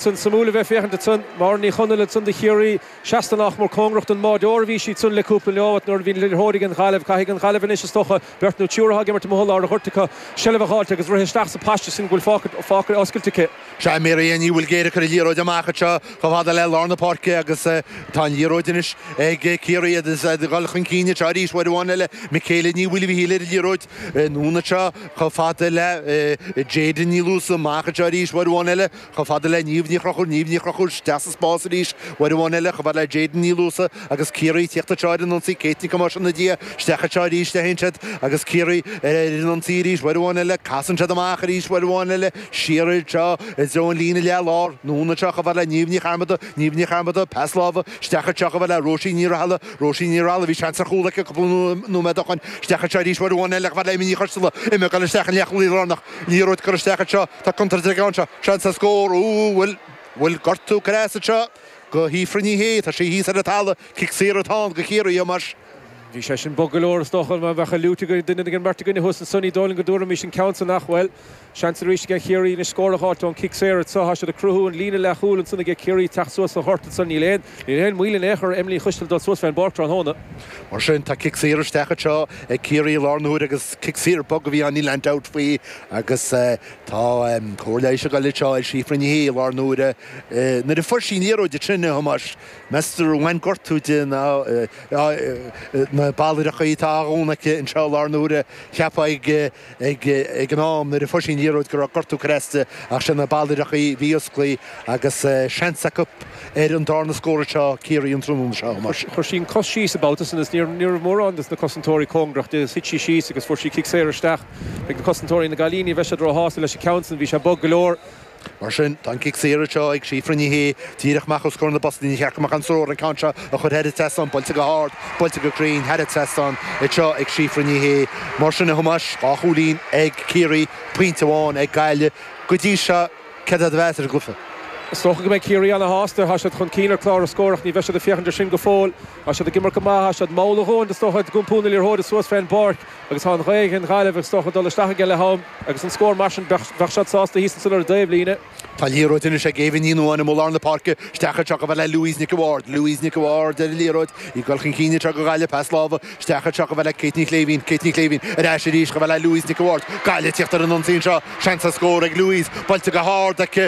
Sin suimiúil a bheith féachaint ansan. Máire Ní Chonaill ansan do Chiarraí. Seasta nach mór cóngarach don mbáideoir a bhí sí ansan le cúpla nóimeat nuair a bhí an liathróid ag an nGaillimh. Caithfidh an Ghaillimh anois is dócha beirt nó triúr athá ag imirt amuigh i lár an ghoirt acu, seilbh a dh'fháilt agus rith isteach sa paiste sin go bhfuil fágtha oscailte acu. Sea, Mary Ellen Ní Bhuilgéir ag cur an liathróid amach anseo chomh fada le lár na páirce agus tá an liathróid anois ag Ciarraí, iad a dhul chun cinn anseo arís uair amháin eile. Michaela Ní Mhaoilmhichíl ar an liathróid anonn anseo chomh fada le Jayden Ní Luasa, amach anseo arís uair amháin eile. Chomh fada le Niamh Ní Chrochúir Niamh Ní Chrochúir isteach sa spás arís uair amháin eile, chomh fada le Jayden Ní Luasa agus Ciarraí ag tíocht anseo ar an ionsaí Kate Nic Thomáis ina diaidh isteach anseo arís le hEin Shed agus Ciarraí ar an ionsaí arís uair amháin eile, casann siad amach arís uair amháin eile, siar anseo i dtreo an líne leath lár, anonn anseo chomh fada le Niamh Ní Charmada Niamh Ní Charmada, pas láimhe isteach anseo chomh fada le Róisín Ní Rathaille Róisín Ní Rathaille, bhí seans ar chúl aici cúpla nóiméad ó shoin, isteach anseo arís uair amháin eile chomh fada le Emma Ní Choisteala Emma ag goil isteach an leath chúlaí lárnach, liathróid curtha isteach anseo. Tá contúirt ann anseo. Seans ar scór. Úúú bhuel bhuel gortú creasa seo go Síofra Ní Shé. Tá sí thíos ar an tala. Cic saor atá ann go Ciarraí a Thomáis. Bhí sé sin bog go leor is dócha. Dá mbeadh an fhliúit ag duine ag an mbeirt againne thuas anso ní dóigh liom go dtabharfaimis an ceann san ach, bhuel. Seans arís aige Ciarraí anois scór a dh'fháilt ón cic saor anseo. Tá siad ag cruthú an líne leath chúil ansan aige Ciarraí ag teacht suas sa ghort ansan. Níl aon níl aon mhoill in aon chor ar Emma Ní Choisteala dul suas fén bpáirc tráthnóna. Mar sin tá cic saor isteach anseo ag Ciarraí i lár na huaire agus cic saor bog a bhí ann níl aon dabht faoi. Agus tá cóir leighis á cur anseo ar Shíofra Ní Shé i lár na h-uaire, Nuair a fuair sí an liathróid ansin a Thomáis, meas tú ar bhain gortú di nó na ballaireachaí atá á dhúnadh aici anseo i lár na h-uaire. Cheapfá ag an am nuair a fuair sí an liathróid go raibh gortú curtha aisti ach sin na ballaireachaí a bhí osclaí agus seans acu ar an dárna scór anseo Ciarraí an tráthnóna seo, a Thomáis. Chuir sí an cos síos an babhta san is ní raibh mórán de na cosantóirí cóngarach di. Thit sí síos agus fuair sí cic saor isteach. Ag na cosantóirí na Gaillimhe, ní bheidh siad ró-shásta leis an gceann san, bhí sé bog go leor. Mar sin, tá an cic saor anseo ag Síofra Ní Shé, díreach amach os comhair na bpostaí. Níor cheart go mbeadh aon stró an ceann seo a chur thar an trasnán, buailte go hard, buailte go cruinn thar an trasnán anseo ag Síofra Ní Shé. Mar sin a Thomáis, dhá chúilín ag Ciarraí, pointe amháin ag Gaillimh go dtí seo, céard é do mheas ar an gcluiche? Is dócha go mbeidh Ciarraí ana-shásta, tá siad chun cinn ar chlár a' scóir ach ní bheidh siad ag féachaint ar sin go fóill. Tá siad ag imirt go maith, tá siad mall a dhóthain is dócha, ag iompú na liathróide suas fén bpáirc. Agus tá an ghaoth ag an nGaillimh is dócha ag dul isteach aige leath-am agus an scór mar sin bheadh bheadh siad sásta thíos ansan ar an dtaobhlíne. Tá an liathróid anois ag Eva Ní Nuadháin amuigh i lár na páirce, isteach anseo chomh fada le Louise Nic a Bhaird, Louise Nic a Bhaird ar an liathróid, í ag goil chun cinn anseo go Gaillimh, pas láimhe, isteach anseo chomh fada le Kate Ní Shléibhín, Kate Ní Shléibhín ar ais arís chomh fada le Louise Nic a Bhaird, Gaillimh ag teacht ar an ionsaí anseo, seans ar scór ag Louise, buailte go hard aici,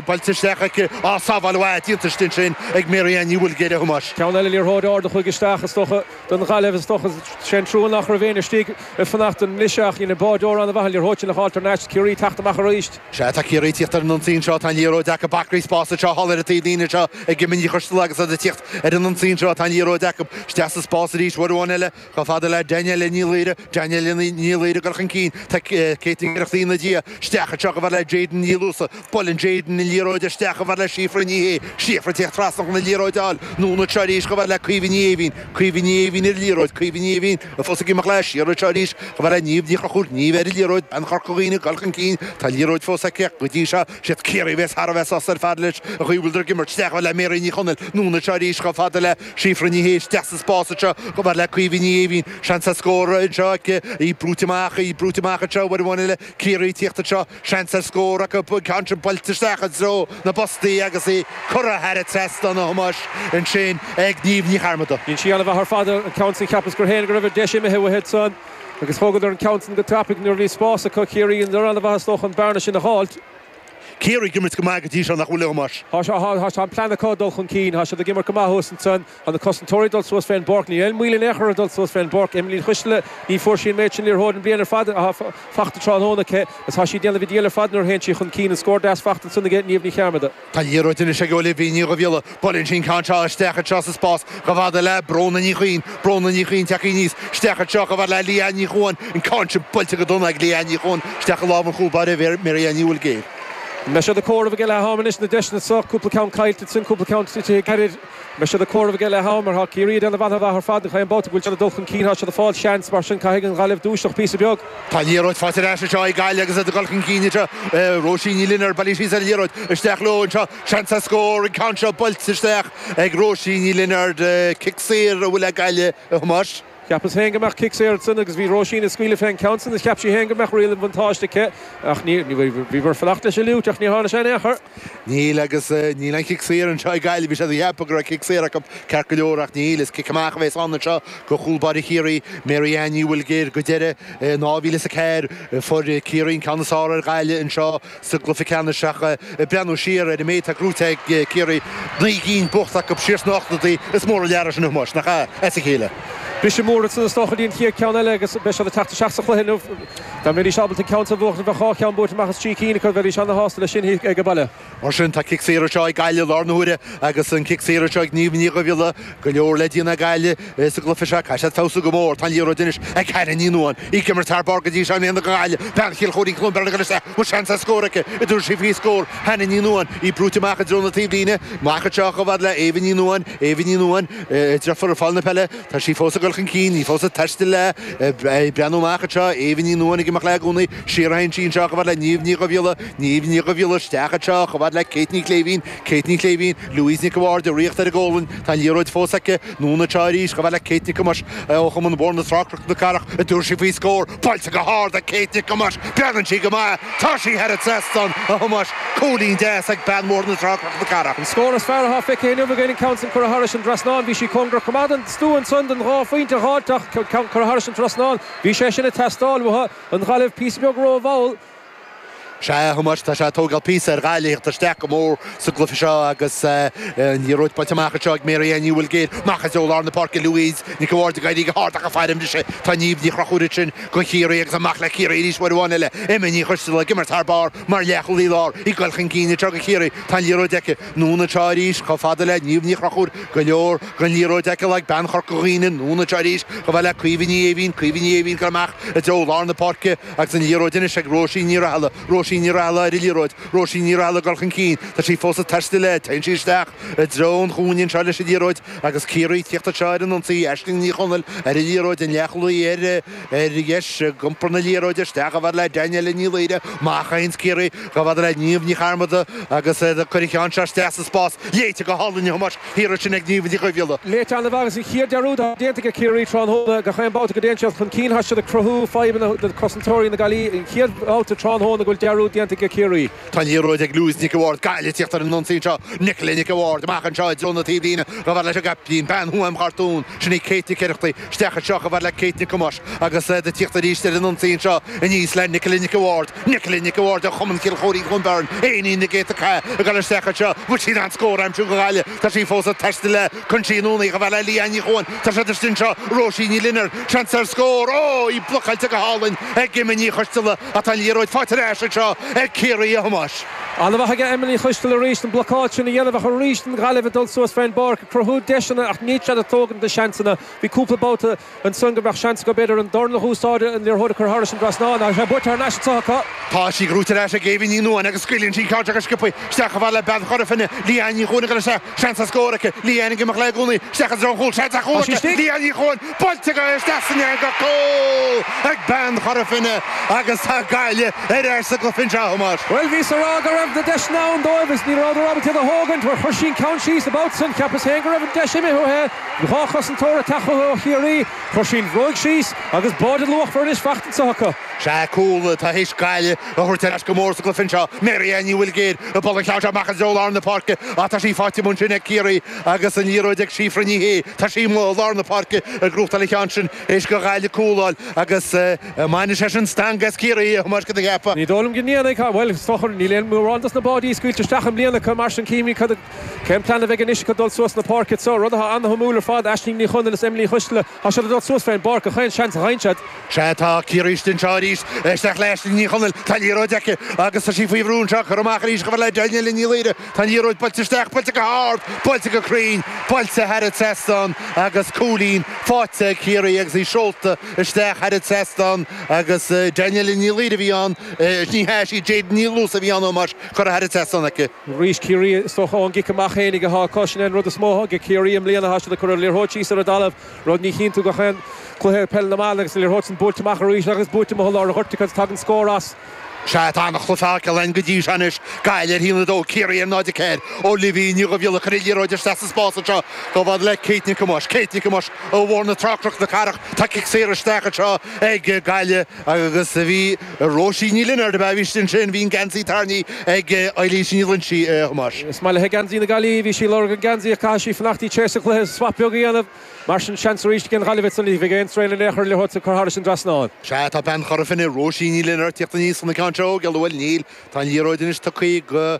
buailte isteach aici, á sábháil mhaith déanta istigh ansin ag Mary Ellen Ní Bhuilgéir a Thomáis. Ceann eile liathróid ard a chuaigh isteach is dócha. don Ghaillimh. Is dócha sé an trua nach raibh éinne istigh ag fanacht don mbriseadh ach dhein Bolger ana-mhaith an liathróid a fháil tar n-ais Ciarraí teacht amach arís. Sea, tá Ciarraí tíocht ar an ionsaí seo, tá an liathróid acu, acraí spáis anseo thall ar an taobh líne seo ag Emma Ní Choisdealbha agus iad ag tíocht ar an ionsaí seo, tá an liathróid acu, isteach sa spás arís, uair amháin eile, chomh fada le Danielle Ní Laoire, Danielle Ní Laoire ag goil chun cinn, tá Kate Nic Oireachtaigh ina diaidh, isteach anseo chomh fad le Jadyn Ní Luasaigh, Buaileann Jadyn an liathróid isteach chomh fad le Síofra Ní Shé. Síofra, tíocht trasna chun an liathróid a fháil. Anonn anseo arís chomh fad le Caoimhe Ní Éimhín. Caoimhe Ní Éimhín ar an liathróid. Caoimhe Ní Éimhín fós ag imeacht leis. Siar anseo arís chomh fad le Niamh Ní Chonchúir. Niamh ar an liathróid. Bean Chorca Dhuibhne ag goil chun cinn. Tá an liathróid fós aici ach go dtí seo, siad Ciarraí a bheas thar a bheith sásta ar fad leis an gcaoi a bhfuileadar ag imirt isteach chomh fhad le Mary Ní Chonaill. Anonn anseo arís chomh fada le Síofra Ní Shé. Isteach sa spás anseo chomh fad le Caoimhe Ní Éimhín. Seans ar scór anseo aici. Í brúite amach. Í brúite amach anseo. Uair amháin eile, Ciarraí ag tíocht anseo. Seans ar scór acu an ceann seo buailte isteach i dtreo na bpostaí agus í curtha thar an trasnán, a Thomáis, ansin ag Niamh Ní Chearmada. Dhein sí an-mhaith ar fad an ceann sin. Cheapas féin go raibh an deis imithe uaithi ansan agus thógadar an ceann san go tapaidh nuair a bhí spás acu. Ciarraí bhíodar an-mhaith is dócha an bearna sin a dh'fháilt. Ciarraí ag imirt go maith go dtí seo, nach bhfuil, a Thomáis? Tá an plean acu dul chun cinn. Thá siad ag imirt go maith thuas ansan. Tá na cosantóirí ag dul suas fén bpáirc. Níl aon mhoill in aon chor ar dhul suas fén bpáirc Emma Ní Choisdealbha. Ní bhfuair sí an méid sin liathróid an bhliain ar fad athá fachta tráthnóna aici agus tá sí ag déanamh an diabhail ar fad nuair a théann sí chun cinn. An scór deas fachta ansan aige Niamh Ní Chearmada. Tá liathróid anois ag Olivia Ní Dhuibhghiolla. Buaileann sí an ceann seo isteach anseo sa spás chomh fada le Bróna Ní Chuinn. Bróna Ní Chuinn tagtha aníos isteach anseo chomh fad le Leanne Ní Chuain. An ceann sin buailte go dona ag Leanne Ní Chuain isteach i lámh an chúl báire Mary Ellen Ní Bhuilgéir. An mbeidh siad ag comhaireamh ag leath ama anois? Na deiseanna seo, cúpla ceann caillte ansin, cúpla ceann tite gairid. Beidh siad ag comhaireamh aige leath ama, mar tá Ciarraí ag déanamh an-mhaith ar fad. Chaon babhta go bhfuil siad ag dul chun cinn, tá siad ag fáil seans. Mar sin, caithfidh an Ghaillimh dúiseacht píosa beag. Tá liathróid faighte ar ais anseo ag Gaillimh agus iad ag dul chun cinn anseo. Róisín Ní Lionaird, bailíonn sí an liathróid isteach leo anseo. Seans ar scór, an ceann seo buailte isteach ag Róisín Ní Lionaird. Cic saor a bhfuil ag Gaillimh, a Thomáis. Cheapas féin go mbeadh cic saor ansin agus bhí Róisín ag scaoileadh fén gceann san is cheap sí féin go mbeadh riail an bhuntáiste aici ach ní, bhíomar ag fanacht leis an bhfliúit ach níor tháinig sé in aon chor. Níl agus níl aon chic saor anseo ag Gaillimh. Bhí siad ag ceapadh go raibh cic saor acu ceart go leor ach níl. Is cic amach a bheas ann anseo go chúl báire Chiarraí, Mary Ellen Ní Bhuilgéir. Go deimhin in 2004 fuair Ciarraí an ceann is fearr ar Ghaillimh anseo sa gcluiche ceannais ach ag breathnú siar ar an méid atá gnóite ag Ciarraí, naoi gcinn buachta acu siar sna hochtóidí, is mór an lear é sin a Thomáis, nach ea? As a chéile. Is mór agus is dócha go dtí an chéad ceann eile agus beidh siad ag teacht isteach sa chluiche inniu. Dá mbeidís ábalta ceann so a bhuachaint bheadh dhá cheann buaite amach as trí cinn acu bheidís ana-shásta leis sin ag baile. Mar sin, tá cic saor anseo ag Gaillimh i láthair na huaire agus an cic saor anseo ag Niamh Ní Dhuibhghiolla. Go leor le déanamh ag Gaillimh sa gcluiche seo. Caithfidh siad feabhsú go mór. Tá an liathróid anois ag Hannah Ní Nuadháin. Í ag imirt thar barr go dtí seo i mbliana do Ghaillimh. Bean Chill Choirín, Cluain Bheirn anois an bhfuil seans ar scór aici an dtabharfaidh sí faoi scór. Hannah Ní Nuadháin. Í brúite amach i dtreo na taobhlíne. Amach anseo chomh fada le Eva Ní Nuadháin. Eva Ní Nuadháin. Deirfiúr ag fáil na peile. Tá sí fós ag dul chun cinn. Í fós ag taisteal léi, ag breathnú amach anseo, Éabha Ní Nuadhain ag imeacht léi i gcónaí, siar a théann sí anseo chomh fada le Niamh Ní Dhubhghiolla, Niamh Ní Dhubhghiolla isteach anseo chomh fada le Kate Ní Shléibhín, Kate Ní Shléibhín, Louise Nic a' Bhaird ag rith ar a gualainn, tá an liathróid fós aici, anonn anseo arís chomh fada le Kate Nic Thomáis ó Chumann Bhóthar na Trá Cnoc na Cathrach, an dtabharfaidh sí faoi scór, buailte go hard ag Kate Nic Thomáis, breathnaíonn sí go maith, tá sí thar an trasnán, a Thomáis. Cúilín deas ag bean Bhóthar na Trá, Cnoc na Cathrach. An scór is fearr athá feicthe inniu againn, an ceann san curtha thairis an dtrasnán. Bhí sí cóngarach go maith don stua ansan, don dhá phointe dh'fháilt ach an ceann curtha thairis an trasnán. Bhí sé sin a' teastáil uatha. An Ghaillimh píosa beag ró-mhall. Sea, a Thomáis, tá sé a' tógáil píosa ar Ghaillimh a thíocht isteach go mór sa gcluiche seo agus an liathróid buailte amach anseo ag Mary Ellen Ní Bhuilgéir. Amach i dtreo lár na páirce Louise Nic a' Bhaird ag éirí go hard ach a' faire mise tá Niamh Ní Chonchúir ansin. go Ciarraí agus amach le Ciarraí arís uair amháin eile, Emma Ní Choisteala, ag imirt thar barr mar leathchúlaí láir ag dul chun cinn anseo do Chiarraí, tá an liathróid aici, anonn anseo arís, chomh fada le Niamh Ní Chonchúir, go leor den liathróid aici le ag bean Chorca Dhuibhne, anonn anseo arís, chomh fada le Caoimhe Ní Éimhín, Caoimhe Ní Éimhín, cur amach i dtreo lár na páirce agus an liathróid anois ag Róisín Ní Rathaille, Róisín Ní Rathaille ar an liathróid, Róisín Ní Rathaille ag dul chun cinn, tá sí fós ag taisteal léi, téann sí isteach i dtreo an chúinne anseo leis an liathróid, Agus Ciarraí ag tíocht anseo ar an ionsaí, Aisling Ní Chonaill ar an liathróid, an leathchúlaí ar dheis, ag iompar na liathróide isteach, chomh fada le Danielle Ní Laoire, amach a théann Ciarraí, chomh fada le Niamh Ní Chearmada agus cuirfidh sí an ceann seo isteach sa spás, léite go hálainn a Thomáis, thiar ansin ag Niamh Ní Dhubhghiolla. Léite an-mhaith agus an chéad dearúd atá déanta ag Ciarraí tráthnóna, gach aon babhta go dtéann siad chun cinn, tá siad ag cruthú fadhbanna do chosantóirí na Gaillimhe, an chéad bhabhta tráthnóna go bhfuil dearúd déanta ag Ciarraí. Tá an liathróid ag Louise Nic a' Bhaird, Gaillimh, ag tíocht ar an ionsaí anseo, Nicola Nic a' Bhaird amach anseo i dtreo na taobhlíne, chomh fada leis an gcaiptín, bean Thuaim Chartún, sin í Kate Nic Oireachtaigh, isteach anseo, chomh fada le Kate Nic Thomáis agus iad ag tíocht arís ar an ionsaí anseo aníos le Nicola Nic a' Bhaird, Nicola Nic a' Bhaird ó Chumann Chill Chóirín-Cluain Bheirn, éinín na gCéadta Cath ag dul isteach anseo, bhfuil siad in ann scór a aimsiú go Gaillimh, tá sí fós ag taisteal léi, tugann sí anonn í chomh fada le Leanne Ní Chuain, tá siad istigh anseo, Róisín Ní Lionaird, seans ar scór, óh, í blocáilte go hálainn ag Emma Ní Choisteala, Tá an liathróid faighte ar ais anseo ag Ciarraí, a Thomáis. An-mhaith aige Emma Ní Choisteala arís, an blocáil sin a dhéanamh ach arís an Ghaillimh ag dul suas fén bpáirc ag cruthú deiseanna ach níl siad ag tógaint na seansanna. Bhí cúpla babhta ansan go mbeadh seans acu b'fhéidir an dorn a húsáid, an liathróid a chur thairis an dtrasnán ach tá sé buaite thar n-ais anso acu. Tá sí gnóite ar ais ag Éabha Ní Nuain agus scaoileann sí an ceann seo go sciobtha isteach chomh fada le Bean Chora Finne, Leanne Ní Chuain agus is é seans ar scór aici. Leanne ag imeacht léi i gcónaí isteach i dtreo an chúil, seans ar chúl aici, Leanne Ní Chuain! Buailte aici isteach san eangach, cúl ag bean Chora Finne agus tá Gaillimh ar ais sa gcluiche anseo, a Thomáis. Bhuel, bhíos a rá go raibh na deiseanna ann dóibh is ní rabhadar ábalta iad a thógaint mar chuir sí an ceann síos an babhta san. Cheapas féin go raibh an deis imithe uaithe. Bhí dhá chosantóir ag teacht chuici ó Chiarraí. Chuir sí an bhróig síos agus báide an-luachmhar anois fachta anso acu. Sea, cúl atá tar éis Gaillimh a thabhairt ar ais go mór sa gcluiche anseo. Mary Ellen Ní Bhuilgéir ag bualadh an ceann seo amach i dtreo lár na páirce ach tá sí faighte amuigh ansin ag Ciarraí. Agus an liathróid ag Síofra Ní Shé, tá sí i lár na páirce ag gnóthachtáil an cheann sin, th'éis do Ghaillimh cúl a fháil agus an mbainfidh sé sin stangadh as Ciarraí a Thomáis, an gceapfá? Ní dóigh liom go ndéanfaidh ach, bhuel, is dócha, níl aon mhórán dos na báidí scaoilte isteach i mbliana acu, mar sin cífimid cad a, cén plean a bheidh anois acu dul suas na páirce. Tá rud atá ana-shuimiúil ar fad, Aisling Ní Chonaill is Emma Uí Choistealbha, tá siad ag dul suas fén bpáirc, gach aon seans a gheibheann siad. Sea, tá Ciarraí istigh anseo arís. Isteach le Aisling Ní Chonaill. Tá liathróid aici agus tá sí faoi bhrú anseo. Curtha amach arís chomh fada le Danielle Ní Laoire. Tá an liathróid buailte isteach, buailte go hard, buailte go cruinn, buailte thar an trasnán agus cúilín faighte ag Ciarraí agus í seolta isteach thar an trasnán agus Danielle Ní Laoire a bhí ann. Ní hea, sí Jadyn Ní Luasa a bhí ann, a Thomáis, curtha thar an trasnán aici. Arís Ciarraí, is dócha ón gcic amach fhéinig atá acu. Sin é an rud is mó atá ag Ciarraí i mbliana. Tá siad ag cur an liathróid síos ar an dtalamh. Rud ní chíonn tú gach aon cluiche i peil na mban agus an liathróid sin buailte amach arís agus buailte amuigh i lár an ghoirt agus tagann scór as. Sea, tá an-chluiche feicthe againn go dtí seo anois, Gaillimh ar haon a dó, Ciarraí ar náid a ceathair. Olivia Ní Dhuibhghiolla ag cur an liathróid isteach sa spás anseo chomh fada le Kate Nic Thomáis. Kate Nic Thomáis ó Bhóthar na Trá, Cnoc na Cathrach. Tá cic saor isteach anseo ag Gaillimh. Agus bhí Róisín Ní Lionáird, ab ea? Bhí sí ansin, bhí an geansaí tarraingthe ag Eilís Ní Loingsigh, a Thomáis. Is maith leithe geansaí na Gaillimhe, bhí sí ag lorg an geansaí ach caithfidh sí fanacht go dtí tréis an chluiche, swap beag a dhéanamh. Mar sin, seans arís ag an nGaillimh ansan, ní bheadh aon straidhn in aon chor an liathróid seo a chur thairis an dtrasnán. Sea, tá bean Chora Finne, Róisín Ní Lionáird, tíocht aníos chun an ceann seo a thógáil, an bhfuil? Níl. Tá an liathróid anois tugthaí go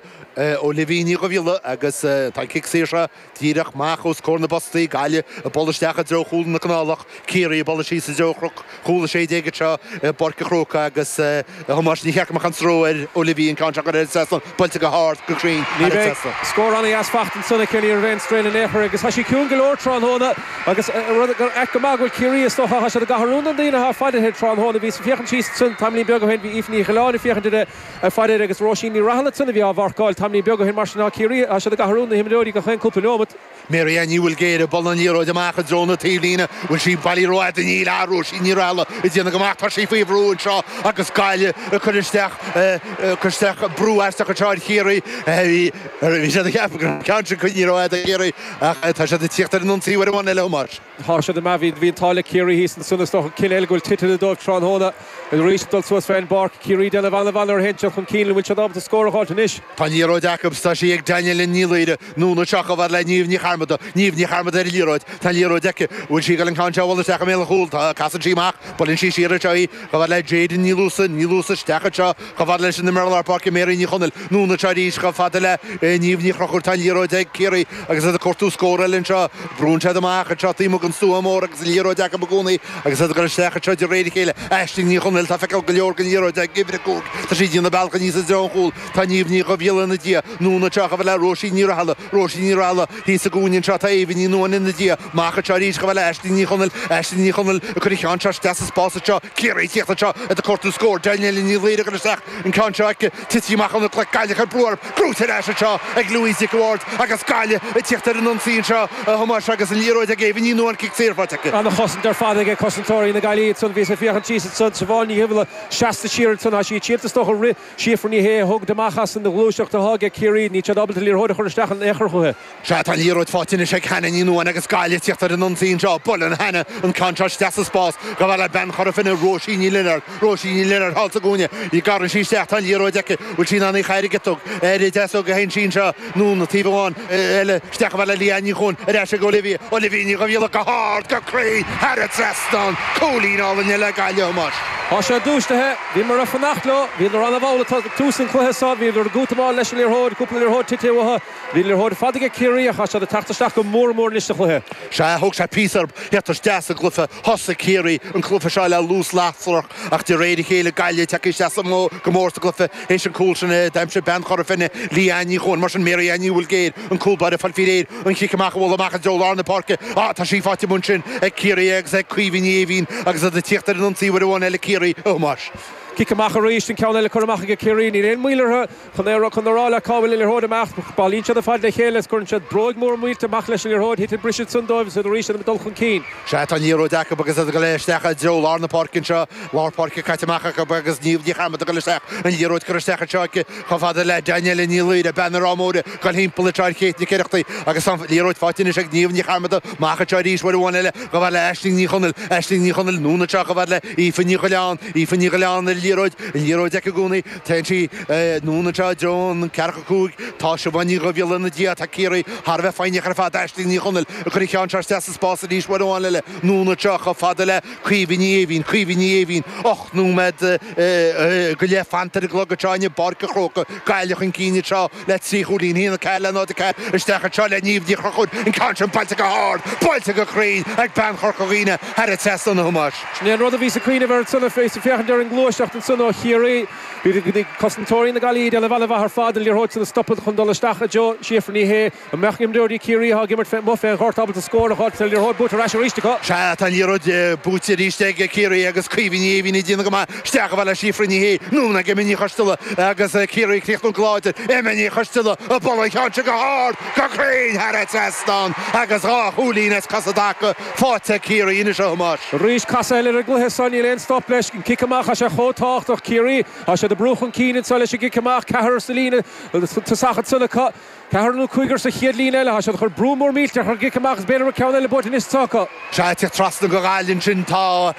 Olivia Ní Dhuibhghiolla agus tá an cic saor seo. Díreach amach os comhair na bpostaí, Gaillimh ag dul isteach i dtreo chúl na Canálach, Ciarraí, ag dul síos i dtreo chnoc chúl 16 anseo i bPáirc an Chrócaigh agus a Thomáis, níor cheart go mbeadh aon stró ar Olivia an ceann seo a chur thar an trasnán, buailte go hard, go cruinn thar an trasnán. Scór ana-dheas fachta ansan aici, ní raibh aon straidhn in aon chor agus tá sí ciúin go leor tráthnóna agus rud gur ait go maith go bhfuil Ciarraí is dócha, tá siad ag athrú na daoine atá ag faire uirthi tráthnóna bhíos ag féachaint síos ansin tamaillín beag ó shin bhí Aoife Ní Dhuilleáin ag féachaint ar a Ar fad air agus Róisín Ní Rathaille ansan a bhí á mharcáil. Tamlín beag ó shin mar sin tá Ciarraí, tá siad ag athrú na himreoirí gach aon cúpla neomat. Mary Ellen Ní Bhuilgéir ag bualadh na liathróid amach i dtreo na taobhlíne. An bhfuil sí bailithe rófhada? Níl, tá Róisín Ní Rathaille ag déanamh go maith. Tá sí faoi bhrú anseo agus Gaillimh ag cur isteach ag cur isteach brú aisteach anseo ar Chiarraí. Bhí siad ag ceapadh go raibh an ceann sin coinnithe rófhada ag Ciarraí ach tá siad ag tíocht ar an ionsaí uair amháin eile Thomáis. Tá siad ambaist. Bhí an t-ádh le Ciarraí thíos ansan. Is dócha cinneadh eile go bhfuil titithe dóibh tráthnóna arís ag dul suas fe'n bpáirc. Ciarraí déanamh an-mhaith nuair a théann siad chun cinn. An bhfuil siad ábalta scór a fháilt anois? Tá an liathróid acub 's tá sí ag Danielle Ní Laoire. Anonn anseo chomh fada le Niamh Ní Charmada. Niamh Ní Charmada ar an liathróid. Tá an liathróid aici. An bhfuil sí ag dul an ceann seo a bhualadh isteach i mbéal an chúl? Tá. Casann sí amach. Buaileann sí siar anseo í chomh fada le Jadyn Ní Luasa. Ní Luasa isteach anseo. Chomh fada leis an imreoir lár páirce Mary Ní Chonaill, anonn anseo arís, chomh fada le Niamh Ní Chrochúir. Tá an liathróid ag Ciarraí agus iad ag cuartú scór eile anseo. Brúnn siad amach anseo taobh amuigh den stua mór agus an liathróid acu i gcónaí agus iad ag dul isteach anseo de réir a chéile. Aisling Ní Chonaill, tá feiceáil go leor den liathróid ag uimhir a cúig. Tá sí ag déanamh a bealach aníos i dtreo an chúl. Tá Niamh Ní Dhuibhghiolla ina diaidh, anonn anseo, chomh fada le Róisín Ní Rathaille. Róisín Ní Rathaille, thíos sa gcúinne anseo tá Éabha Ní Nuadháin ina diaidh. Amach anseo arís chomh fada le Aisling Ní Chonaill. Aisling Ní Chonaill ag cur an cheann seo isteach sa spás anseo. Ciarraí ag tíocht anseo, iad ag cuartú scór. Danielle Ní Laoire ag cur isteach an ceann seo aici. Titithe amach óna glaic, Gaillimh ag cur brú uirthi. Gnóite ar ais anseo ag Louise Nic an Bhaird agus Gaillimh ag tíocht ar an ionsaí anseo a Thomáis agus an liathróid ag Éabha Ní Nuadháin. Cic saor faighte aici. Ana chosaint ar fad aige cosantóirí na Gaillimhe ansan. Bhíos ag féachaint síos ansan. Siobhán Ní Dhuibhghiolla seasta siar ansan. Thá sí ag triall is dócha. Rith. Síofra Ní Shé a thógaint amach as an ghluaiseacht atá age Ciarraí. Níl siad ábalta liathróid a chur isteach in ao'chor chucu. Sea, tá liathróid faighte anois ag Hannah Ní Nuadháin agus Gaillimh ag tíocht ar an ionsaí anseo. Buaileann Hannah an ceann seo isteach sa spás. Chomh fada le bean Chora Finne, Róisín Ní Lionáird. Róisín Ní Lionáird thall sa gcúinne. Gearrann sí isteach. Tá an liathróid aici. Bhfuil sí in ann í chaill ag tug ar a deasóg a sheinn sí anseo. Anonn anseo uair amháin eile isteach chomh fada le Leanne Ní Chuain, ar ais ag Olivia, Olivia Ní Dhuibhghiolla, go hard, go cruinn, thar an trasnán, cúilín álainn eile ag Gaillimh, a Thomáis. Tá siad dúistithe. Bhíomar ag fanacht leo. Bhíodar an-mhall ag tús an chluiche seo. Bhíodar ag útamáil leis an liathróid, cúpla liathróid titithe uathu. Bhí liathróid ar fad age Ciarraí ach tá siad ag teacht isteach go mór mór anois sa chluiche. Sea, thóg sé píosa orthu tíocht isteach sa gcluiche. Thosaigh Ciarraí an cluiche seo le luas lasrach. Ach de réir a chéile Gaillimh tagtha isteach go mór sa gcluife théis an cúl sin a d'aimsigh bean Chora Finne, Leanne Ní Chuain. Mar sin Mary Ellen Ní Bhulgéir an cúl báire ag fáil faoi réir an cic amach a bhualadh amach i dtreo lár na páirce. Á tá sí faighte amuigh ansin ag Ciarraí agus ag Caoimhe Ní Éimhín agus iad ag tíocht ar an ionsaí uair amháin eile Ciarraí, a Thomáis. Cic amach arís, an ceann eile curtha amach aige Ciarraí. Níl aon moill orthu. Chun é a rocadh in a rá leat cá bhfuil an liathróid amach, bailíonn siad ar fad le chéile is cuireann siad bróig mhór mhillteach leis an liathróid, titeann an briseadh ansan dóibh is iad arís in ann dul chun cinn. Sea, tá an liathróid acu agus iad ag dul isteach i dtreo lár na páirce anseo, lár páirce caite amach acu agus Niamh Ní Chearmada ag dul isteach, an liathróid curtha isteach anseo aici chomh fada le Danielle Ní Laoire, bean na Rátha Móire, ag dul timpeall ar Kate Nic Oireachtaigh agus tá an liathróid faighte anois ag Niamh Ní Chearmada amach anseo arís uair amháin eile chomh fada le Aisling Ní Chonaill, Aisling Ní Chonaill, anonn anseo chomh fada le Aoife Ní Dhuilleáin, Aoife Ní Dhuilleáin, an liathróid, an liathróid aici i gcónaí. Téann sí anonn anseo i dtreo an ceathracha cúig, Tá Siobhán Ní Dhuibhghiolla ina diaidh, tá Ciarraí thar a bheith foighneach ar fad, Aisling Ní Chonaill ag cur an cheann seo isteach sa spás arís, uair amháin eile, anonn anseo, chomh fada le Caoimhe Ní Éimhín, Caoimhe Ní Éimhín, ocht nóiméad go leith fanta ar an gclog, anseo inniu i bPáirc a' Chrócaigh, Gaillimh chun cinn anseo. le trí chúilín 1-4 le 0-4 isteach anseo le Niamh Ní Chonchúir, an ceann sin buailte go hard, buailte go cruinn ag bean Chorca Dhuibhne, thar an trasnán a Thomáis. Sin é an rud a bhíos ag cuimhneamh air ansan is ag féachaint ar an ngluaiseacht ansan ó Chiarraí. Bhí cosantóirí na Gaillimhe ag déanamh an-mhaith ar fad, na liathróidí a stopadh chun dul isteach i dtreo Síofra Ní Shé. An mbeadh imreoirí Ciarraí athá ag imirt fé, amuigh fé an ghort ábalta scór a fháil agus an liathróid buailte ar ais arís acu? Sea, tá an liathróid buailte arís ag Ciarraí agus Caoimhe Ní Éimhín ag déanamh go maith. Isteach chomh fada le Síofra Ní Shé, anonn ag Emma Ní Choisteala agus Ciarraí ag críochnú go láidir, Emma Ní Choisteala ag bualadh an cheann seo go hard, go cruinn thar an trasnán agus dhá chúilín as cosa i dtaca faighte ag Ciarraí anois a Thomáis. Arís casadh eile ar an gcluiche seo, níl aon stop leis, an cic amach, tá sé chomh tábhachtach. Ciarraí, tá siad ag brú chun cinn anseo leis an gcic amach, ceathrar sa líne tosaigh ansan acu. Ceathrar nó cúigear sa chéad líne eile, tá siad ag cur brú mór millteach ar an gcic amach agus b'fhéidir go raibh ceann eile buaite anois is atá acu. Sea, ag tíocht trasna go Gaillimh ansin tá,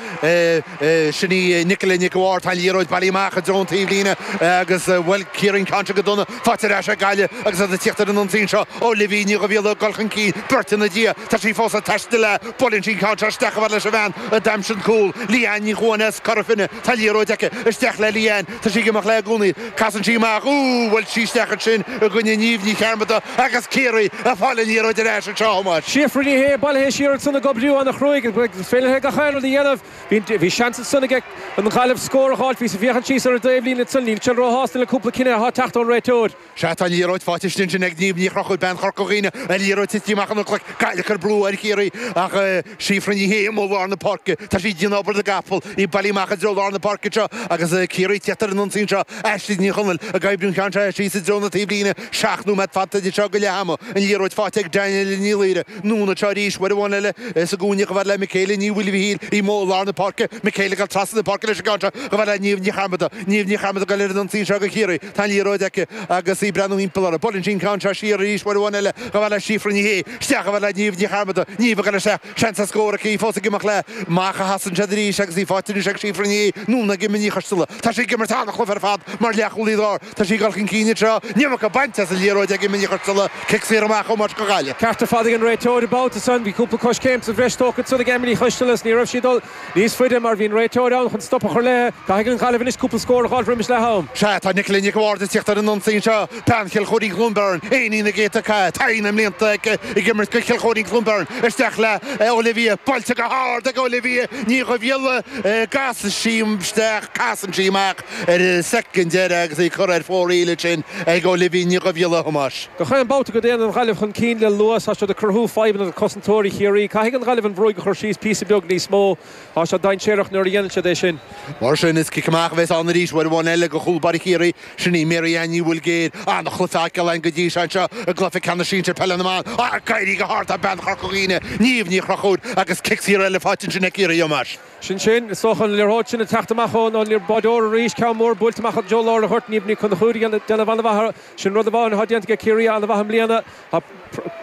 sin í Nicola Nic a' Bhaird, tá an liathróid bailí amach i dtreo an taobh líne agus bhuail Ciarraí an ceann seo go dona. Fáite ar ais ag Gaillimh agus iad ag tíocht ar an ionsaí anseo, Olivia Ní Dhuibhghiolla ag dul chun cinn beirt ina diaidh. Tá sí fós ag taisteal léi, buaileann sí an ceann seo isteach a fhad leis an bhean a d'aimsigh an cúl, Leanne Ní Chuain as Cora Finne, tá an liathróid aici, isteach le Leanne, Tá sí ag imeacht léi i gcónaí. Casann sí amach, Úúú, bhuail sí isteach ansin i gcoinne Niamh Ní Chearmada agus Ciarraí a' fáil an liathróid ar ais anseo a Thomáis. Síofra Ní Shé, bailithe siar ansan ag oibriú ana chruaidh, is féidir léi gach aon rud a dhéanamh. Bhí seans ansan aige an Ghaillimh scór a dh'fháilt, bhíos a' féachaint síos ar a dtaobh líne ansan, níl Dan róshásta le cúpla cinneadh athá teacht ón réiteoir. Sea, tá an liathróid fáite ansin sin ag Niamh Ní Chonchúir, bean Chorca Dhuibhne, an liathróid tite amach an cnoic, Gaillimh ag cur brú ar Chiarraí ach Síofra Ní Shé amuigh i lár na páirce. Tá sí ag déanamh obair na gcapall, í ag bailiú amach i dtreo lár na páirce anseo agus Ciarraí ag tíocht ar an ionsaí anseo. Aisling Ní Chonaill ag oibriú an cheann seo síos i dtreo na taobhlíne, seacht nóiméad fanta idir seo go leath ama. An liathróid fáite ag Danielle Ní Laoire, anonn anseo arís uair amháin eile sa gcúinne, chomh fada le Michaela Ní Mhaoilmhichíl, í amuigh i lár na páirce, Michaela ag dul trasna na páirce leis an gceann seo, chomh fada le Niamh Ní Chearmada, Niamh Ní Chearmada ag goil ar an ionsaí anseo ag Ciarraí. Tá an liathróid aici agus í ag breathnú thimpeall uirthi. Buaileann sí an ceann seo siar arís, uair amháin eile chomh fada le Síofra Ní Shé isteach a fhad le Niamh Ní Chearmada. Niamh ag dul isteach, seans ar scór aici, í fós ag imeacht léi, amach a chasann sí arís agus í faighte anois ag Síofra Ní Shé. Anonn ag Emma Ní Choisteala. Tá sí ag imirt an-chluiche ar fad mar leath-chúlaí lár. Tá sí ag dul chun cinn anseo. An iomarca bainte as an liathróid ag Emma Ní Choisteala. Cic saor amach ó Mairt go Gaillimh. Ceart ar fad ag an réiteoir an babhta san. Bhí cúpla coiscéim sa bhreis tógtha ansan ag Emma Ní Choisteala is ní raibh sí ag dul Níos faide, mar bhí an réiteoir ann chun stop a chur leithe. Caithfidh an Ghaillimh anois cúpla scór a dh'fháilt roimis leath am. Sea, tá Nicola Nic a' Bhaird ag tíocht ar an ionsaí anseo, bean Chill Choirín Chluain Bheirn, iníon na gcéadta cath, taithí na mblianta aici ag imirt go Chill Choirín Chluain Bheirn. Isteach le Olivia, buailte go hard ag Olivia Ní Dhuibhghiolla, casann sí isteach, casann sí amach ar an soicind deireadh agus í curtha ar fóraoil ansin ag Olivia Ní Dhuibhghiolla, a Thomáis. Gach aon bhabhta go dtéann an Ghaillimh chun cinn le luas, tá siad ag cruthú fadhbanna go Chosantóirí Chiarraí, Caithfidh an Ghaillimh an bhróig a chur síos píosa beag níos mó. Tá siad dainséarach nuair a dhéanann siad é sin. Mar sin, is cic amach a bheas ann arís uair amháin eile go chúl báire Chiarraí. Sin í Mary Ellen Ní Bholgair, an-chluiche á fheiceáil againn go dtí seo anseo i gcluiche ceannais sinsir peile na mban. Ag éirí go hard tá bean Chorca Dhuibhne, Niamh Ní Chonchúir, agus cic saor eile faighte ansin ag Ciarraí a Thomáis. Sin sin. Is dócha an liathróid sin ag teacht amach ón an báireoir arís. Ceann mór buailte amach go lár an ghoirt, Niamh Ní Chonchúir ag déanamh an-mhaith. Sin rud amháin atá déanta ag Ciarraí an-mhaith i mbliana. Tá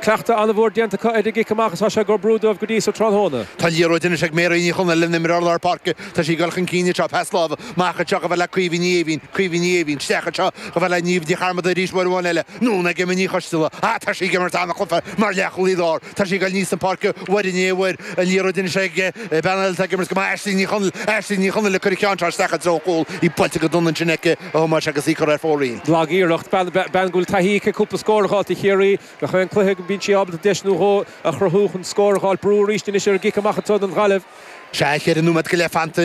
cleachtadh an-mhór déanta acu ar an gcic amach is tá sé ag oibriú dóibh go dtí so tráthnóna. Tá an liathróid anois ag Mary Ní Chonaill, an imreoir lár páirce. Tá sí ag dul chun cinn anseo. Pas láimhe amach anseo chomh fada le Caoimhe Ní Éimhín. Caoimhe Ní Éimhín. Isteach anseo chomh fada le Niamh Ní Chearmada arís uair amháin eile. Anonn ag Emma Ní Choisteala. Ah tá sí ag imirt an-chluiche mar leath chúlaí lár. Tá sí ag dul aníos na páirce uair i ndiaidh uair. An liathróid anois ag. Bean eile atá ag imirt go maith, Aisling Ní Chonaill. Aisling Ní Chonaill ag cur an cheann seo isteach i dtreo an chúil, í buailte go dona ansin aici a Thomáis agus í curtha ar fóraoil. Lag iarracht, bean go bhfuil taithí aici cúpla scór a fháilt do Chiarraí gach aon cluiche go mbíonn sí ábalta deis nó dhó a chruthú chun scór a fháilt. Brú arís anois ar an gcic amach atá ag an Ghaillimh. Sea, cheithre nóiméad go leith fanta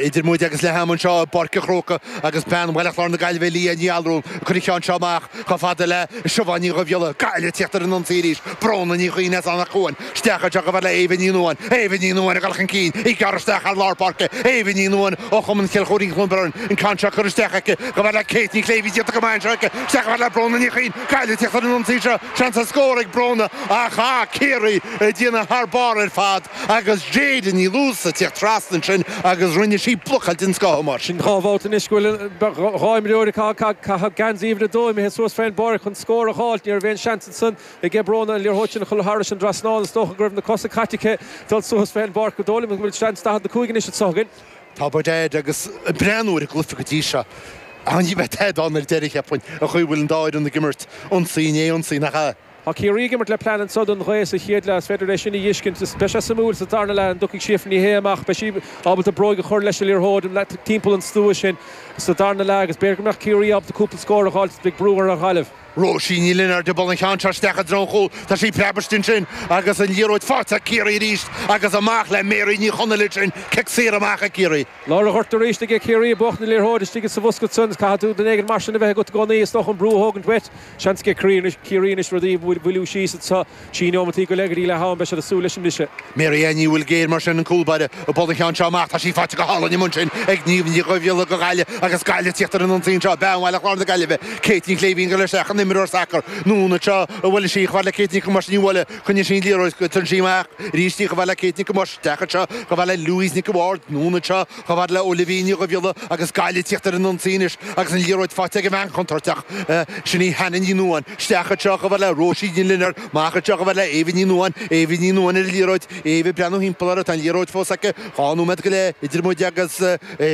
idir muid agus leath ama anseo i bPáirc an Chróca agus bean Bhaile Chláir na Gaillimhe, Leah Ní Allmhuráin, ag cur an cheann seo amach chomh fada le Siobhán Ní Dhubhghiolla. Gaillimh ag tíocht ar an ionsaí arís, Bróna Ní Chuinn as Anach Cuain. Isteach anseo chomh fada le Éabha Ní Nuadháin, Éabha Ní Nuadháin ag dul chun cinn, í ag gearradh isteach thar lár páirce, Éabha Ní Nuadháin ó Chumann Chill Choirín Cluain Bheirn, an ceann seo curtha isteach aici, chomh fada le Kate Ní Shléibhín, déanta go maith anseo aici, isteach chomh fada le Bróna Ní Chuinn, Gaillimh ag tíocht ar an ionsaí seo, seans ar scór ag Bróna ach tá Ciarraí ag déanamh thar barr ar fad agus Jayden Ní Luasa ag tíocht trasna ansin agus rinne sí blocáil den scoth mar sin. Dhá bhabhta anois go bhfuil dhá imreoir ag caitheamh geansaí uimhir a dó imithe suas fén bpáirc chun scór a dh'fháilt, ní raibh aon seans ansan Aige Bróna an liathróid sin a chur thairis an dtrasnán. Is dócha go raibh na cosa caite aici dul suas fé an bpáirc. Is dóigh liom go bhfuil seans 45 anois anso againn. Tá Bud Aid agus ag breathnú ar an gcluife go dtí seo. Ach ní bheidh tada ann ar deireadh, cheapfainn, an chaoi a bhfuil an dá fhoireann ag imirt. Ionsaí i ndiaidh ionsaí, nach ea? Tá Ciarraí ag imirt le plean anso don ghaoth sa chéad leath. Is féidir é sin a dh'fheiscint. Is beidh sé suimiúil sa tarna leath an dtiocfaidh Síofra Ní Shé amach. Beidh sí ábalta bróig a chur leis an liathróid timpeall an stua sin sa darna leath agus b'fhéidir go mbeadh Ciarraí ábalta cúpla scór a dh'fháilt. Beidh brú ar Ghaillimh. Róisín Ní Lionáird ag bualadh an cheann seo isteach i dtreo an chúil. Tá sí ag preabadh istigh ansin agus an liathróid faighte ag Ciarraí arís agus amach le Mary Ní Chonaill ansin. Cic saor amach ag Ciarraí. Lár an ghoirt arís ag Ciarraí ag buachaint na liathróide istigh sa bhosca san is caithfidh tú duine éigin mar sin a bheith agat i gcónaí is dócha an brú a thógaint uait. Seans ag Ciarraí anois rudaí a mhoilliú síos anseo. Trí neomataí go leith go dtí leath ama beidh siad ag súil leis an mbriseadh. Mary Ellen Ní Bholguidhir, mar sin, an cúl báire ag bualadh an cheann seo amach. Tá sí faighte go hálainn amuigh ansin ag Niamh Ní Dhhoibhíola, Go Gaille, agus Gaille ag tíocht ar an ionsaí anseo, Bean Bhaile Chláir na Gaillimhe, Kate Ní Shléibhín, ag goil isteach an imreoir sacair anonn anseo a bhuaileann sí, Chomh fad le Kate Nic Thomáis Nicola, Coinníonn sí an liathróid, Cuireann sí amach arís í, Chomh fad le Kate Nic Thomáis, Isteach anseo, Chomh fad le Louise Nic an Bhaird, anonn anseo. Chomh fada le Olivia Ní Dhubhghiolla agus Gaillimh ag tíocht ar an ionsaí anois agus an liathróid faighte ag an mbean chontúirteach, sin í Hannah Ní Nuadháin, isteach anseo, chomh fada le Róisín Ní Lionáird, amach anseo, chomh fada le Éabha Ní Nuadháin, Éabha Ní Nuadháin ar an liathróid, Éabha ag breathnú thimpeall uirthi, tá an liathróid fós aici, dhá nóiméad go leith idir muid agus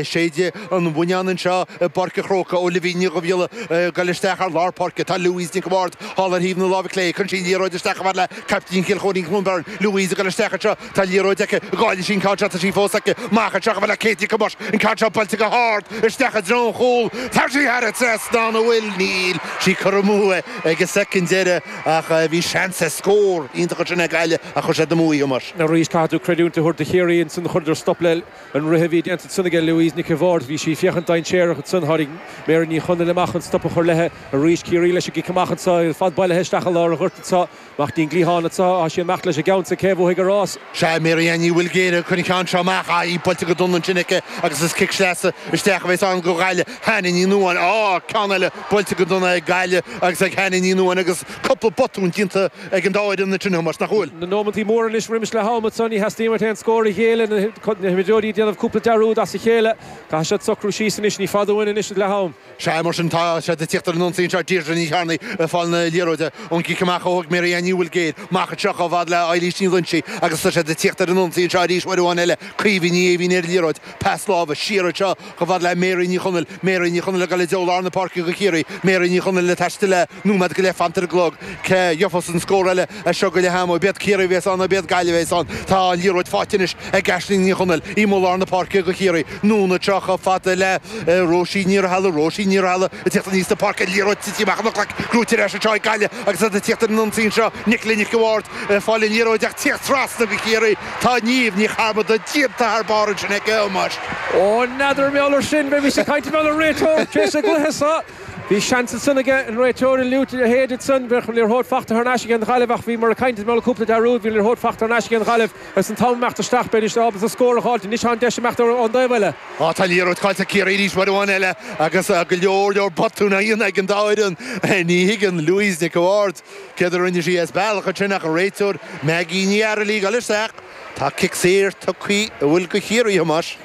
séideadh an bhonnáin anseo i bPáirc an Chrócaigh, Olivia Ní Dhubhghiolla ag goil isteach thar lár páirce, tá Louise Nic an Bhaird thall ar thaobh na láimhe clé, cuireann sí an liathróid isteach, chomh fada le caiptín Chill Choirín Cluain Bheirn, Louise ag goil isteach anseo, Tá an liathróid aici, an gcaillfidh sí an ceann seo, tá sí fós aici, amach anseo, chomh fada le Kate Nic Thomáis, an ceann seo buailte go hard isteach i dtreo an chúil, tá sí thar an trasnán, an bhfuil? Níl sí, curtha amú ag an soicind deireadh ach bhí seans ar scór iontach ansin ag Gaillimh ach chuir siad amú é a Thomáis. Arís caithfidh tú creidiúint a thabhairt do Chiarraí, ansin chuireadar stop leis an rith a bhí déanta ansin aige Louise Nic a'Bhaird, bhí sí ag féachaint dainséarach ansin, tháinig Mary Ní Chonaill amach chun stop a chur leithe, arís Ciarraí leis an gcic amach anseo, fad bailithe isteach i lár an ghoirt anseo, amach i dtreo an chliatháin atá sí ag imeacht leis a' gceannsa cé bhuafaidh an rás. Sea, Mary Ellen Ní Bhuilgéir ag cur an cheann seo amach ach í buailte go dona ansin aici agus is cic sleasa isteach a bheas ann go Ghaillimh Hannah Ní Nuadháin. Á, ceann eile buailte go dona ag Gaillimh agus ag Hannah Ní Nuadháin agus cúpla botún déanta ag an dá fhoireann ansin a Thomáis, nach bhfuil? Na nómantaí mór anois roimis leath-am anso ní theastaíonn uait aon scór a ghéilleadh na himreoirí a' déanamh cúpla dearúd as a chéile. Caithfidh siad socrú síos anois, ní fada uainn anois leath-am. Sea, mar sin, tá siad ag tíocht ar an ionsaí anseo, Deirdre Ní Chearnaigh ag fáil na liathróide ón gcic amach a thóg Mary Ellen Ní Bhuilgéir amach anseo chomh fad le Eilís Ní Loingsigh agus tá siad ag tíocht ar an ionsaí anseo arís uair amháin eile, Caoimhe Ní Eimhín ar an liathróid pas láimhe siar anseo chomh fad le Mary Ní Chonaill, Mary Ní Chonaill ag dul i dtreo lár na páirce go Chiarraí, Mary Ní Chonaill ag taisteal le. nóiméad go leith fanta ar an gclog. Cé a gheofas an scór eile as seo go leath ama? B'iad Ciarraí a bhéas ann nó b'iad Gaillimh a bhéas ann. Tá an liathróid fáighte anois ag Aisling Ní Chonaill. Í amuigh i lár na páirce go Chiarraí. Anonn anseo chomh fada le Róisín Ní Rathaille. Róisín Ní Rathaille ag tíocht aníos na páirce. Liathróid tite amach óna glac. Gnóite ar ais anseo ag Gaillimh agus iad ag tíocht ar an ionsaí anseo. Nicola Nic a' Bhaird ag fáil an liathróid ach ag tíocht trasna go Chiarraí. Tá Niamh Ní Charmada díonta thar barr ansin aici a Thomáis. Ó n'fheadar mar gheall air sin, bheimis ag caint mar gheall ar an réiteoir tar éis an gcluiche seo. Bhí seans ansan aige an réiteoir an fhliúit a shéideadh ansan. Bheadh an liathróid fachta thar n-ais aige an Ghaillimh ach bhíomar ag caint mar gheall ar cúpla dearúd, bhí an liathróid fachta thar n-ais aige an Ghaillimh agus an t-am ag imeacht isteach, b'fhéidir ábalta scór a dh'fháilt anois tá an deis ag imeacht ón dtaobh eile. Á, tá an liathróid cáillte ag Ciarraí arís uair amháin eile agus go leor, leor botún á dhéanamh ag an dá fhoireann. Ní thuigeann Louise Nic a' Bhaird céard a rinne sí as bealach ansin ach an réiteoir Maggie Ní Fhaircheallaigh ag dul isteach. Tá cic saor tugtha uaithi go Chiarraí, a Thomáis.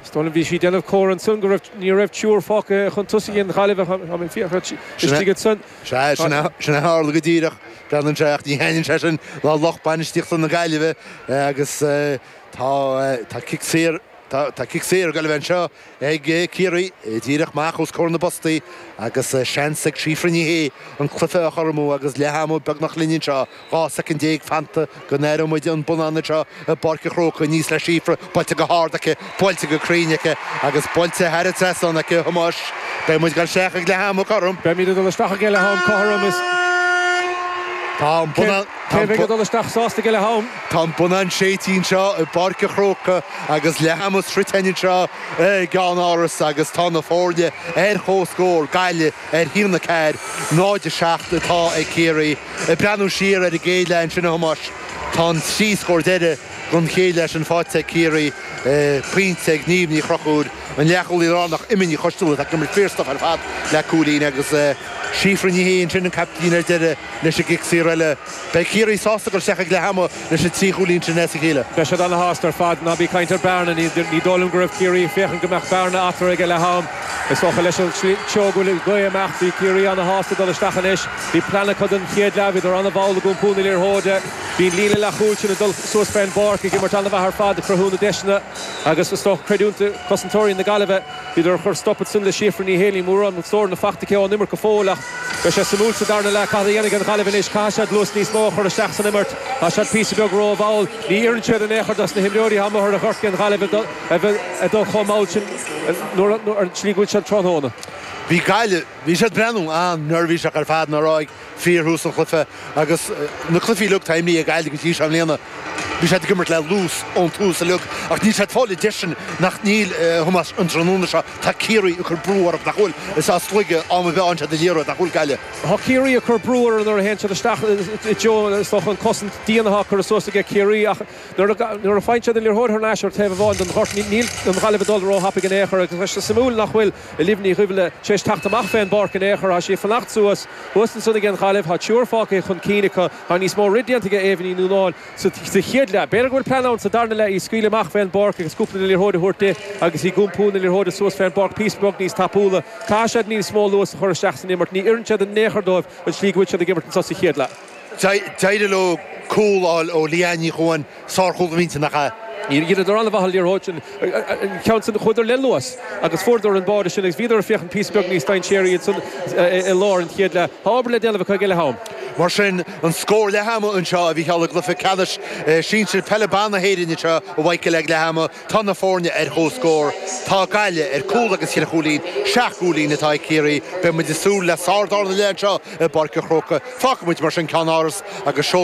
Is dóigh liom bhí sí ag déanamh comhartha ansan go raibh, ní raibh triúr fágtha chun tosaigh aige an Ghaillimh, tá mé ag fiafraí istigh ansan. Sea, sin a tharla go díreach, gan an sé ach ní thaitníonn sé sin le lucht bainistíochta na Gaillimhe agus tá, tá cic saor, tá cic saor ag Gaillimh anseo ag Ciarraí, díreach amach os comhair na bpostaí agus seans ag Síofra Ní Shé an cluiche a chothromú agus leath ama beagnach linn anseo. 12 soicind fanta go n-aireoidh muid an bonnán seo i bPáirc an Chrócaigh aníos le Síofra buailte go hard aici, buailte go cruinn aici agus buailte thar an trasnán aici a Thomáis. Beidh muid ag dul isteach ag leath ama cothrom. Beimid ag dul isteach aige leath-am cothrom is Tá an bonnán, tá an bonnán. Cé a bheidh ag dul isteach sásta aige leath-am? Tá an bonnán séidte anseo i bPáirc an Chrócaigh agus leath ama sroichte anseo i gCeannáras agus tá na foirne ar chomhscór, Gaillimh ar 1, 4, 0, 7 atá ag Ciarraí. Ag breathnú siar ar an gcéad leath ansin a Thomáis, tá an trí scór deire gon chéad leath sin faighte ag Ciarraí, pointe ag Niamh Ní Chonchúir, an leathchúlaí lárnach Emma Ní Choistealbha atá ag imirt fíorstuf ar fad le cúilín agus Síofra Ní Shé ansin an caiptín ar deire leis an gcic saor eile. Beidh Ciarraí sásta ag dul isteach ag leath-ama Bhí siad trí chúilín trína chéile. Beidh siad ana shásta ar fad. Ná bí ag caint ar bearna. Ní dóigh liom go raibh Ciarraí ag féachaint go mbeadh bearna eatorra ag a leath-am. Is dócha leis an tseó go bhfuil ag dul amach. Bhí Ciarraí ana shásta dul isteach anois. Bhí plean acu don chéad leath. Bhíodar ana mhall ag iompú na liathróide. Bhí an líne leathchúil sin ag dul suas fén bpáirc ag imirt ana mhaith ar fad ag cruthú na deiseanna agus is dócha creidiúint do chosantóirí na Gaillimhe. B'fhéidir gur chuir stop éigin le Síofra. Níl éinní mórán den scóráil fachta aici ón imirt go fóill ach beidh sé suimiúil sa darna leath cad a dhéanfaidh an Ghaillimh anois. Caithfidh siad luas níos mó a chur isteach san imirt. Tá siad píosa beag ró-mhall. Ní oireann siad in aon chor dos na himreoirí atá amu' ar an ngort ag an Ghaillimh a bheith ag dul chomh mall sin ar an tslí go bhfuil siad tráthnóna. Bhí Gaillimh, bhí siad breathnú an-neirbhíseach ar fad, i ndáiríre? Fíorthús an chluife agus na cluifí uilig atá imrithe ag Gaillimh go dtí seo i mbliana. Bhí siad ag imirt le luas ón tús uilig ach níl siad fáil deiseanna, níl, thuas an tráthnóna seo. Tá Ciarraí ag cur brú orthu nach bhfuil is as laige ama a bhíonn siad á n-iarraidh nach bhfuil, a Ghaill. Tá Ciarraí ag cur brú orthu nuair a théann siad isteach i dtreo is dócha an cosaint dian athá curtha suas aige Ciarraí ach nuair a faigheann siad an liathróid thar n-ais ar taobh amháin don ghort níl an Ghaillimh ag dul ró thapaidh in aon chor agus tá sé suimiúil nach bhfuil Olivia Ní Dhuibhile tar éis teacht amach fé an bpáirc in aon chor. Thá sí ag fanacht suas. Thuas ansan ag an Ghaillimh. Thá triúr fágtha aici chun cinn acu. Thá níos mó rith déanta aige Éabha Ní Nuanáin sa chéad leath. B'fhéidir go bhfuil plean ann sa darna leath í a scaoileadh amach fé an bpáirc agus cúpla na liathróid a thabhairt di agus ag iompú na liathróide suas fé an bpáirc píosa beag níos tapúla. Caithfidh siad níos mó luas a chur isteach san imirt. Ní oireann sé in aon chor dóibh an tslí go bhfuil siad ag imirt anso sa chéad leath. D'éirigh leo cúl a fháil ó Ailbhe Ní Chuain, sárchúl a bhí ann, nach ea? Dheineadar an-mhaith an liathróid sin, an ceann sin, chuadar le luas agus fuaireadar an bua as sin agus bhíodar ag féachaint píosa beag níos dainséaraí ansan i lár an chéad leath. Tá obair le déanamh acu ag a leath-am. Mar sin, an scór leath-ama anseo, a Mhícheáil, i gcluiche ceannais sinsir peile ban na hÉireann anseo a Mhíchíl ag leath-ama. Tá na foirne ar chomhscór. Tá Gaillimh ar cúl agus ceithre chúilín, seacht gcúilín, atá ag Ciarraí. Beidh muid ag súil le sárdhara leath anseo i bPáirc an Chrócaigh. Fágfaimid mar sin Ceannáras agus.